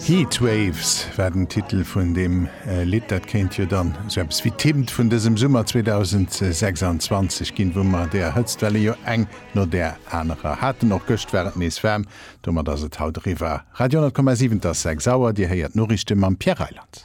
Heatwaves war den Titel vun deem Lidd. Dat kéint jo dann esou eppes wéi d'Hymn vun dësem Summer 2026 ginn, wou mer där Hëtztwelle jo eng no där anerer haten. Och gëscht war et nees waarm, domat ass et haut eriwwer. Radio 10,7, et ass 6 Auer, Dir héiert d'Noriichte mam Pierre Reyland.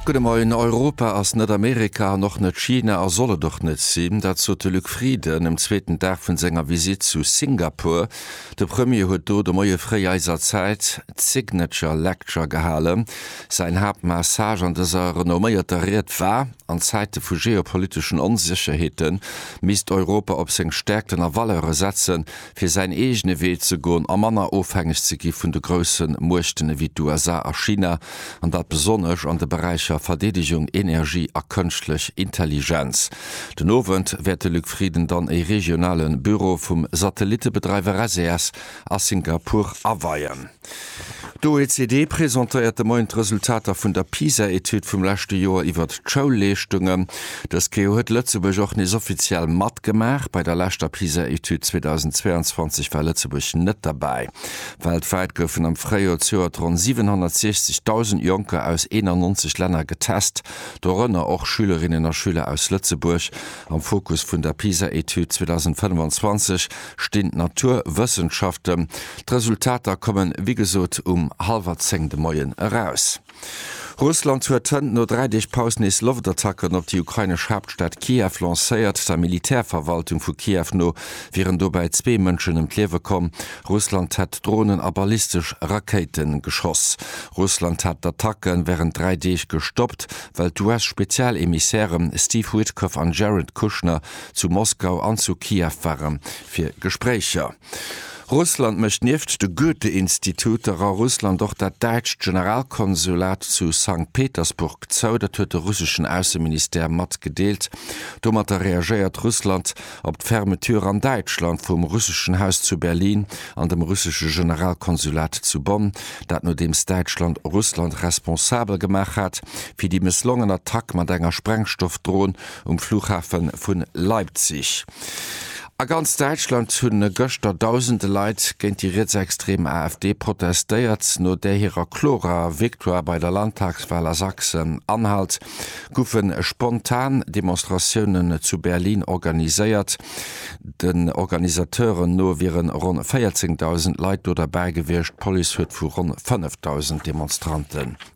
Gudde Moien, Europa ass net Amerika an och net China a soll et och net sinn. Dat sot de Luc Frieden um zweeten Dag vun senger Visitt zu Singapur. De Premier huet do de Moie fréi eiser Zäit d'Signature Lecture gehalen. Säin Haaptmessage an dëser renomméierter Ried war, an Zäite vu geopoliteschen Onsécherheete misst Europa op seng Stäerkten a Valeure setzen, fir säin eegene Wee ze goen a manner ofhängeg ze gi vun de grousse Muechten ewéi d'USA a China, an dat besonnesch an de Beräicher Verdeedegung, Energie a Kënschtlech Intelligenz. Den Owend wäert de Luc Frieden dann e regionale Büro vum Satellittebedreiwer SES a Singapur aweien. D'OECD presentéiert de Moien d'Resultater vun der PISA-Etüd vum leschte Joer iwwert d'Schoulleeschtungen. Dës Kéier huet Lëtzebuerg och nees offiziell matgemaach. Bei der leschter PISA-Etüd 2022 war Lëtzebuerg net derbäi. Weltwäit goufen am Fréijoer zejoert ronn 760.000 Jonker aus 91 Länner getest, dorënner och Schülerinnen a Schüler aus Lëtzebuerg. Am Fokus vun der PISA-Etüd 2025 stinn d'Naturwëssenschaften. D'Resultater kommen wéi gesot um hallwer zéng de Moien eraus. Russland huet hënt no dräi Deeg Paus nees Loftattacken op déi ukrainesch Haaptstad Kiew lancéiert. Der Militärverwaltung vu Kiew no wieren dobäi zwee Mënschen ëm d'Liewe komm. Russland hätt Dronen a ballistesch Rakéite geschoss. Russland hat d'Attacke wärend dräi Deeg gestoppt, well d'US-Spezialemissäre Steve Witkoff an Jared Kushner zu Moskau an zu Kiew ware fir Gespréicher. Russland mécht nieft de Goethe-Instituter a Russland och dat däitscht Generalkonsulat zu Sankt Petersburg zou. Dat huet de russeschen Ausseministère matgedeelt. Domatter reagéiert Russland op d'Fermeture an Däitschland vum russeschen Haus zu Berlin an dem russesche Generalkonsulat zu Bonn. Dat nodeems Däitschland Russland responsabel gemaach hat fir déi mësslongen Attack mat enger Sprengstoffdron Um Flughafe vu Leipzig a ganz Däitschland hu gëschter dausende Leit géint déi rietsextreem AfD protestéiert. No där hirer klorer Victoire bei der Landtagswal a Sachsen-Anhalt goufe spontan Demonstratiounen zu Berlin organiséiert. Den Organisateuren no wiere ronn 14 dausend Leit do derbäi gewiescht, d'Police huet vu ronn 5 dausend Demonstrante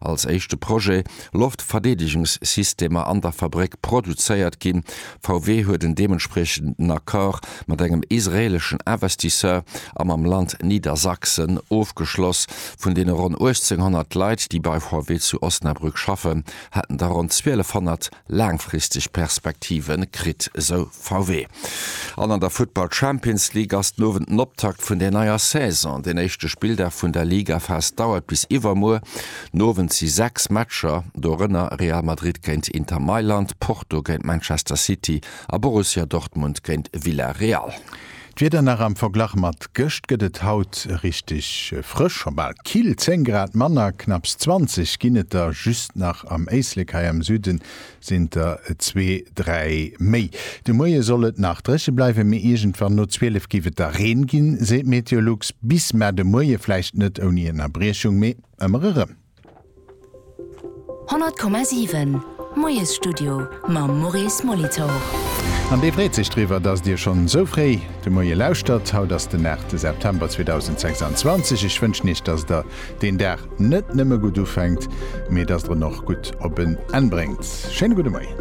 als éischte Projet Loftverdeedegungssystemer an der Fabréck produzéiert ginn. VW huet en deementspriechenden Accord mat engem israeleschen Investisseur a mam Land Niedersachsen ofgeschloss. Vun deene ronn 1.800 Leit, déi bei VW zu Osnabrück schaffen, hätten der ronn 1.200 laangfristeg Perspektive kritt, esou VW. An an der Futtball Champions League ass den Owend den Optakt vun der neier Saison. Den éischte Spilldag vun der Ligaphas dauert bis iwwermuer. Den Owend si 6 Matcher, dorënner Real Madrid géint Inter Mailand, Porto géint Manchester City a Borussia Dortmund géint Villarreal. D'Wieder nach am Verglach mat gëscht gëtt et haut richteg frësch, scho bal kill, 10 Grad manner, knapps 20 ginn et der just nach am Éislek, hei am Süden sinn der et zwee, dräi méi. De Moie soll et nach dréche bleiwen, mee iergendwann no 12 géif et da Reen ginn, seet Meteolux. Bis Mä de Moie vläicht net ouni Ënnerbriechung, mee ëmmer erëm. 100,7 Moiesstudio mam Maurice Molitor. An dee freet sech driwwer, datt Dir schonn esou fréi de Moie lauschtert. Haut ass den 8 September 2026. Ech wënschen Iech, datt Der deen Dag net nëmme gutt ufänkt, mee datt Der en och gutt op en Enn bréngt. Schéine gudde Moien.